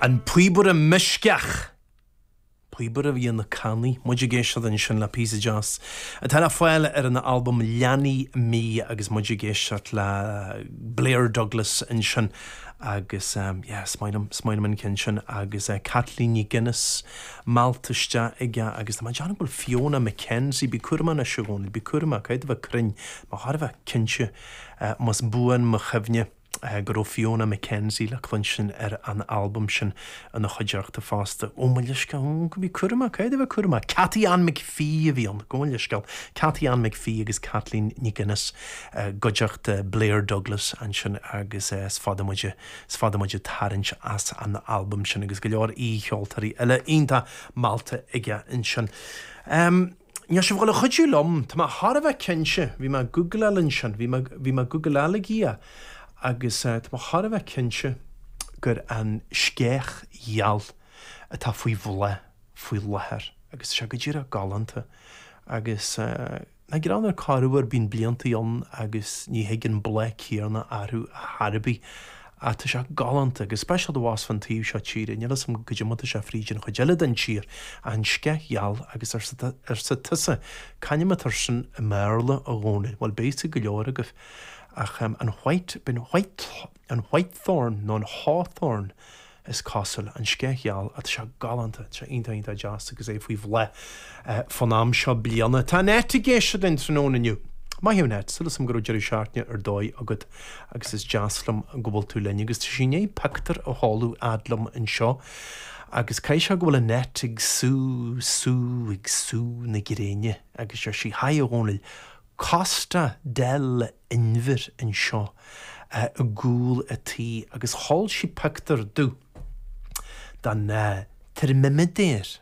An Píobaire Meisceach. Píobaire a bhí ar na cannaí, muid ag éisteacht ansin le píosa deas atá le fáil ar an albam Leanaidh Mi agus muid ag éisteacht le Blair Douglas ansin agus yeah, is maith liom, is maith liom an ceann sin agus Caitlín Nic Aonghais meallta isteach aige agus tá mé ag déanamh go bhfuil Fiona McKenzie, bí cúramach anois a Dhónaill, bí cúramach, caithfidh tú bheith cruinn, mé thar a bheith cinnte, más buan mo chuimhne. go raibh Fiona MacKenzie le cluinstin ar an albam sin ina chuideachta fosta. Ó mo leithscéal, ó, bí cúramach, caithfidh tú a bheith cúramach. Cathy Ann McPhee a bhí ann, gabh mo leithscéal. Cathy Ann McPhee agus Caitlín Nic Aonghais i gcuideachta Blair Douglas ansin agus is fada muid, is fada muid ag tarraingt as an albam sin agus go leor aoi-cheoltóirí eile iontach meallta aige ansin. Níl sibh ag gabháil a chuidiú liom, tá mé thar a bheith cinnte, bhí mé ag googláil ansin, bhí mé, bhí mé ag googláil a Dhia agus tá mé thar a bheith cinnte gur an sceach gheal atá faoi bhláth faoi láthair agus tá sé go díreach galánta agus nach greannmhar, corruair bíonn blianta ann agus ní thigeann an bláth céanna orthu ar chor ar bith Ah, tá sé galánta, go speisialta abhus fan taobh seo tíre, níl 'fhios a'm goidé mar atá sé fríd an chuid eile den tír, ach an sceich gheal agus arsa arsa tusa, c'ainm atá air sin i mBéarla a Dhónaill, bhuel beidh a fhios ag go leor agaibh ach ehm an white, b'in white, an whitethorn nó an hawthorn is cosúil, an sceich gheal, ah tá sé galánta, tá sé iontach iontach deas agus é faoi bhláth. Fán am seo bliana, tá Annette ag éisteacht linn tráthnóna inniu. Maith thú Annette, súil agam go raibh deireadh seachtaine ar dóigh agat agus is deas liom go bhfuil tú linn agus tá sí i ndiaidh pioctúr a sheoladh fhad liom anseo agus caithfidh sé go bhfuil Annette ag sú, sú, ag sú na gréine agus deir sí Hi a Dhomhnaill, Costa del Inbhir anseo i gcúl an tí agus sheol sí pioctúr domh den teirmiméadar.